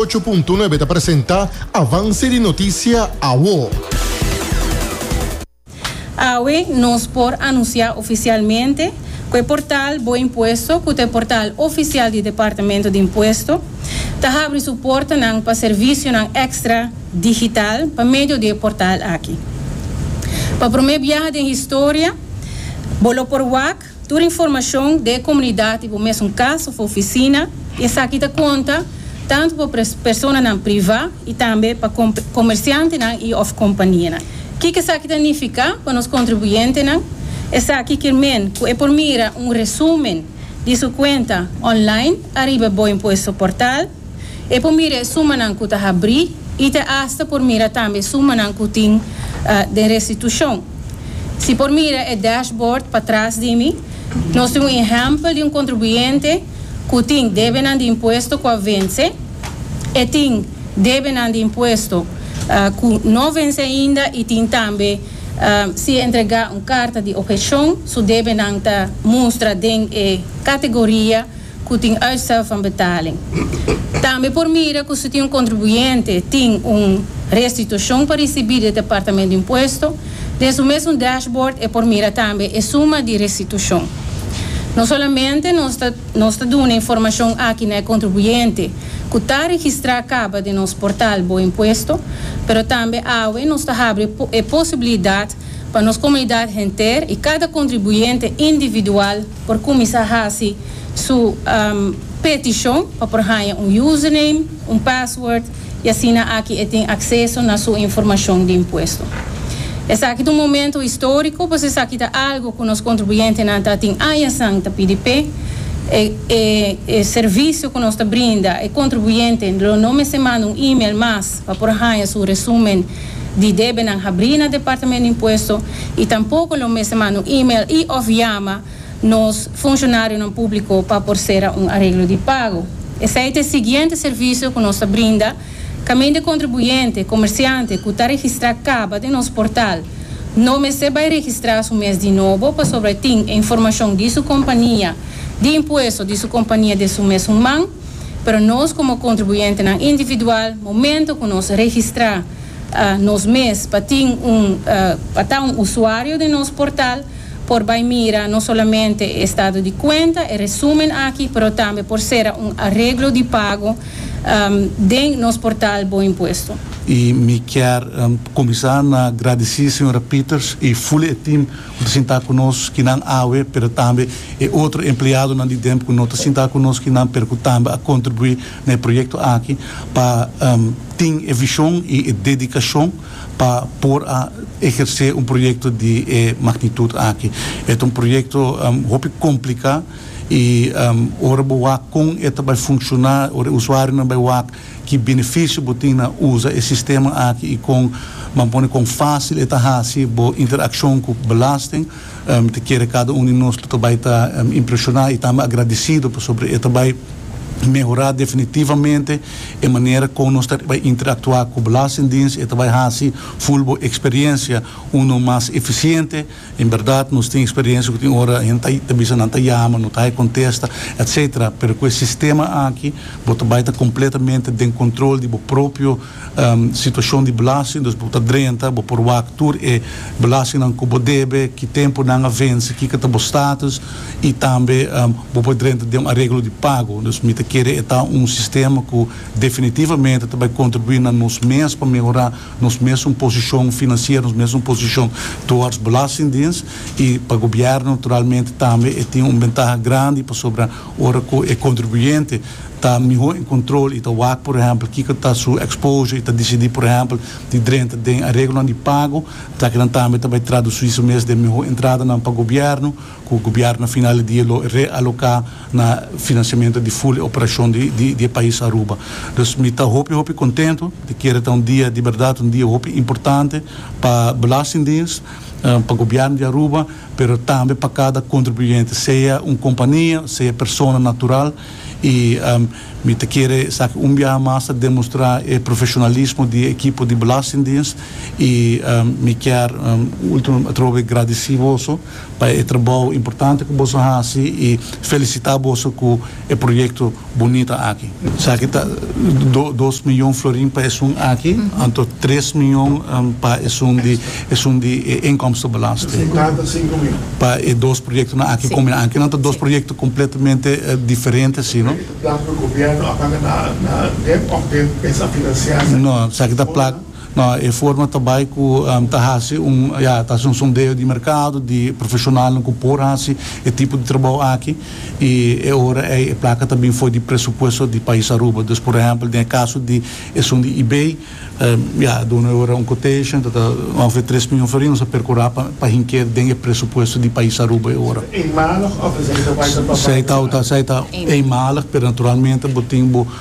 Ocho punto nuebe ta presenta Avance di Noticia Awo. Awe nos por anuncia oficialmente cu e portal Bo Impuesto, cu ta e portal oficial di Departamento di Impuesto, ta habri su portanan pa servicionan extra digital pa medio di e portal aki. Pa prome biaha den historia bo lo por wak Tur informashon den e komunidat i bo mesun kas òf ofisina, esaki ta konta tantu pa personanan privá i tambe pa komersiantenan i òf kompanianan. Kiko esaki ta nifiká pa nos kontribuyentenan? Esaki kier men ku e por mira un resúmen di su kuenta online ariba bo impuesto portal. E por mira e sumanan ku ta habrí i ta asta por mira tambe sumanan ku tin den restitushon. Si por mira e dashbord patras di mi, nos tin un ehèmpel di un kontribuyente ku tin debenan di impuesto ku a vense, e tin debenan di impuesto ku no vense ainda i tin tambe si e entregá un karta di objekshon, su debenan ta mustra den e kategoria. cu tin uitstel van betaling. Tambe por mira cu si tin un contribuyente tin un restitucion pa ricibi di e Departamento di Impuesto, den su mes un dashboard e por mira tambe e suma di restitucion. No solamente nos ta nos ta duna informacion aki na e contribuyente cu ta registra caba den nos portal Bo Impuesto, pero tambe awe nos ta habri e posibilidad pa nos comunidad henter y cada contribuyente individual, por cuminsa haci su peticion pa por haya un username, un password y asina aki e tin acceso na su informacion di impuesto. Esaki ta un momento historico pues esaki ta algo cu nos contribuyentenan ta tin aña san ta pidi p'e. E servicio cu nos ta brinda e contribuyente lo no mester manda un email mas. pa por haña su resumen di debenan habrí na Departamento di Impuesto i tampoko lo mester manda un email i òf yama nos funshonarionan públiko pa por sera un areglo di pago. Esei ta e siguiente servisio ku nos ta brinda kaminda kontribuyente, komersiante, ku ta registrá kaba den nos portal no mester bai registrá su mes di nobo pasobra e tin e informashon di su kompania di impuesto di su kompania den su mes un man. Pero nos komo kontribuyentenan individual, momento ku nos registrá nos mes pa tin un pa ta un usuario den nos portal, por bai mira no solamente e estado di kuenta, e resumen aki, pero tambe por sera un areglo di pago den nos portal Bo Impuesto. I mi kier kuminsá na gradisí señora Peters i Fully e tim. Ku ta sintá ku nos kinan awe, pero tambe e otro empleadonan di Demp ku no ta sintá ku nos kinan, pero ku tambe a kontribuí na e proyekto aki pa tin e vishon i e dedikashon pa por a ehersé un proyekto di e magnitut aki. E ta un proyekto hopi kompliká i ora bo wak kon e ta bai funshoná, ora e usuarionan bai wak, Ki benefisio bo tin na usa e sistema aki i kon ban pone kon fásil e ta hasi bo interakshon ku belasting? Mi ta kere kada un di nos lo ta bai ta impreshoná i tambe agradisido pasobra e ta bai mehorá definitivamente e manera kon nos ta bai interaktuá ku Belastingdiens i e ta bai hasi full bo eksperiensia uno mas efisiente, En berdad nos tin experiencia cu tin ora hende ta bisa nan ta yama, no ta hay contesta, etc. Pero cu e sistema aki bo ta bay ta completamente den control di bo propio situacion di belasting, dus bo ta drenta, bo por wak tur e belastingnan cu bo debe, ki tempo nan a venci, kiko ta bo status y tambe bo por drenta den un areglo di pago. Dus mi ta kere e ta un sistema cu definitivamente ta bay contribui na nos mes pa mehora. nos mesun posishon finansiero, nos mesun posishon towards belastingdiens i pa gobièrnu naturalmente tambe e tin un bentaha grandi pasobra ora ku e kontribuyente ta mihó en kontrol i ta wak por ehèmpel kiko ta su exposure i ta disidí por ehèmpel di drenta den areglonan di pago, lakinan tambe ta bai tradusí su mes den mihó entradanan pa gobièrnu. Ku gobièrnu final di dia lo realoká na finansiamentu di ful e operashon di e pais Aruba. Dus mi ta hopi hopi kontentu, e kere ta un dia di bèrdat, un dia hopi importante pa belastingdiens, pa gobièrnu di Aruba, pero tambe pa kada kontribuyente, sea un kompania, sea persona natural. I mi ta kere esaki un biaha mas ta demostrá e profeshonalismo di e ekipo di belastingdiens i mi kier un último atrobe gradisí boso. pa e trabou importante ku boso hasi i felisitá boso ku e proyekto bunita aki. Esaki ta dos mion florin pa esun aki, anto tres mion pa esun di esun di e inkomstenbelasting. Pa e dos proyektonan aki kome aki nan ta dos proyekto kompletamente diferente si no. No, esaki ta plak No, e forma ta bai ku ta hasi un, ya, ta hasi un sondeo di merkado di profeshonalnan ku por hasi e tipo di trabou aki. I e ora ei e plaka ta bin for di presupuesto di pais Aruba. Dus por ehèmpel den e kaso di esun di Ibei, ya, a duna e ora un quotation, ta ta ongeveer tres mion for ei, nos a perkurá pa pa hink'é den e presupuesto di pais Aruba e ora. Eenmalig of is deze wijdverbreid? Zij ta, zij ta eenmalig, pero naturalmente bo tin bo.